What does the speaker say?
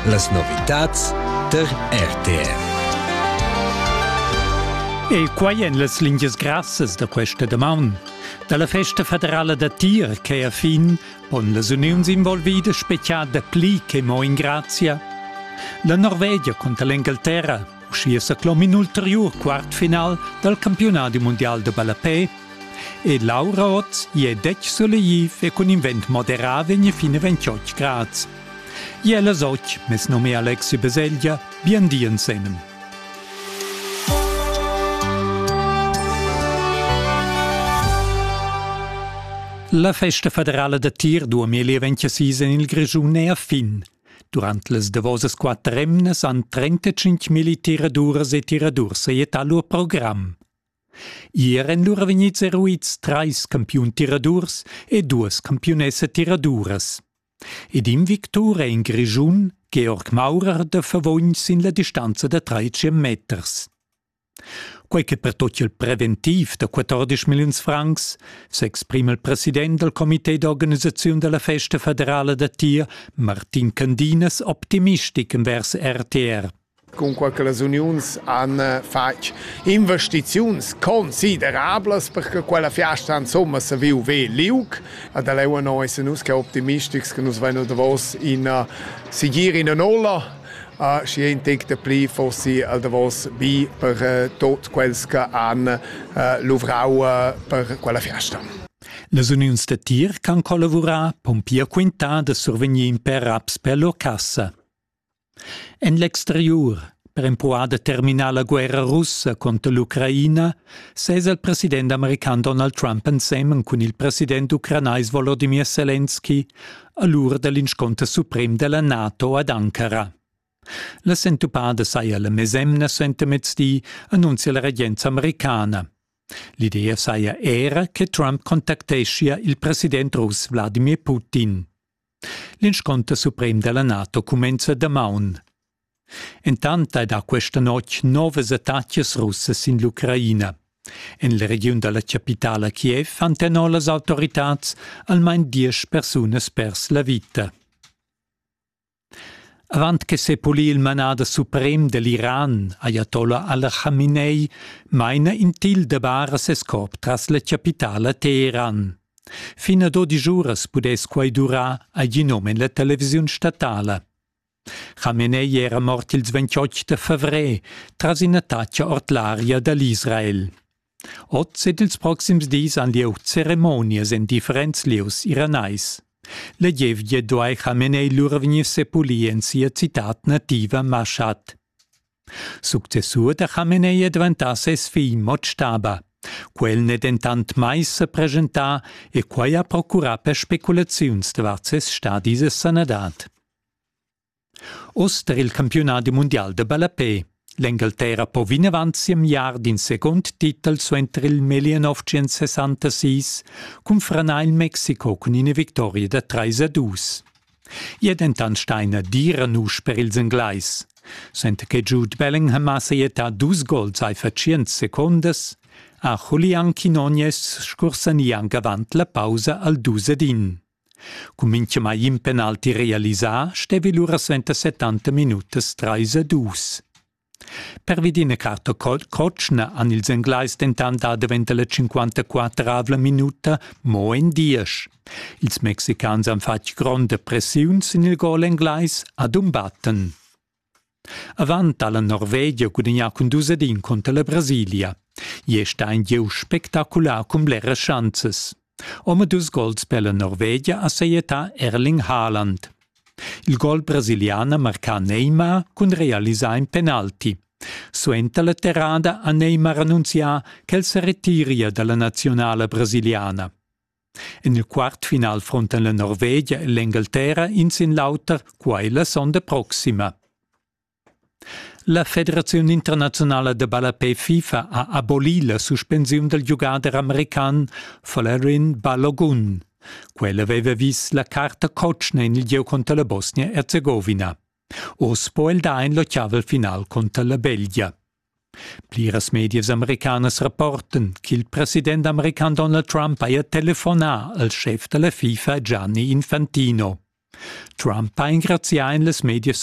Las novitads tar RTR. E quai en las lingias grassas da questa damaun. Da la festa federala da tir che a fin pon las uniuns involvidas speziar dapli che mo in grazia. La Norvegia cunter l'Engalterra, uschia sa clom in ulteriur quartfinal dal campionadi mondial de ballapé. E Laura Oz je dec solegiv e cun invent moderà vegn fin a 28 grads. Ier las otg, mes num è Alexi Beseglia, bien di ensenem. La festa federala da tir 2026 en il Grischun è a fin. Durant las davosas quatter emnas han 35 militiraduras e tiradurs sajettà lur program. Ier èn lura vegnids eruids trais campiun tiradurs e duas campiunessa tiraduras. Ed in victur è in Grischun, Georg Maurer da Favogn sin la distanza da trais meters. Quei che pertutga il preventiv da 14 milliuns francs, s'exprima il president dal comité d'organisaziun della festa federala da tir, Martin Candinas, optimistic envers RTR. cunquai che las uniuns han fatg investiziuns considerablas per che quella fiasta insomma sa viu ve liug. Ed el è noi se nus che optimistics che nus vein el davos ina sigir ina nola uh, și ein tec de pli fossi al davos bi per uh, tot quels che han uh, luvrau uh, per quella fiasta. Las uniuns da tir can collavurar pon pia quintar da survegnir in per raps per lur cassa. En l'exteriur, per empruar da terminar la guerra russa conter l'Ucraina, sesa il president american Donald Trump ensemen cun il president ucranais Volodymyr Zelensky a l'ura dell'insconter suprem della NATO ad Ankara. La sentupada saja la mesemna suentermezdi, annunzia la regenza americana. L'idea saja era che Trump contacteschia il president russ Vladimir Putin. L'insconter suprem della NATO cumenza damaun. Entant ei da questa notg novas attacas russas sin l'Ucraina. En la regiun dalla capitala Kiev han tenor las autoritads almain diesch persunas pers la vita. Avant che sepulir il manader suprem dell'Iran, Ayatollah al-Khamenei, meina in til de bara ses corp tras la capitala Teheran. Fin a dodisch uras pudess quai durar ad in um en la televisiun statala. Khamenei era mort ils 28 da favrer tras in'attacca ord l'aria da l'Israel. Oz ed ils proxims dis han lieu ceremonias en differents lieus iranais. La gievgia duai Khamenei lura vegnir sepulì en sia citad nativa Mashat. Successur da Chamenei è diventà ses figl Motstaba. Quel n'è dentant mai sa preschentà e quai ha procurà per speculaziuns davart ses stadi e sanadad. Oz tar il campiunadi mundial da ballapè. L'Engalterra po vinavant siemiar d'in second titel suenter il 1966 cun franar il Mexiko cun ina victoria da 3 a 2. Ia dentant staina dira nusch per ils Englais. Senta che Jude Bellingham ha saietà dus gols ai fa tschient secondas, ha Julian Quinones scursani anc avant la pausa al dus ed in. Cun mintgamai in penalti realisà stevi lura suenter 70 minutas 3 a 2. Pervi d'ina carta cotschna han ils Englais dentant dà davent la 54 minuta mo en diesch. Ils Mexicans han fatg gronda pressiun sin il gol englais Adumbatten. Avant ha la Norvegia gudagnà cun dus ad in conter la Brasilia. Ier sta in gieu spectacular cun bleras schanzas. Omadus gols per la Norvegia ha sajettà Erling Haaland. Il gol brasiliana marcà Neymar cun realisar in penalti. Suenter la terrada ha Neymar annunzià ch'el sa retiria dalla nazionala brasiliana. En il quartfinal frontan la Norvegia e l'Engalterra in sin l'auter quai la sonda proxima. La federaziun internaziunala da ballapè FIFA ha abolì la suspensiun dal giugader american Folarin Balogun. Quel aveva vis la carta cotschna en il gieu cunter la Bosnia-Erzegowina. Oz po el dar in l'ottavel final cunter la Belgia. Pliras medias americanas rapportan ch'il president american Donald Trump haja telefonà al schef da la FIFA Gianni Infantino. Trump ha engrazià en las medias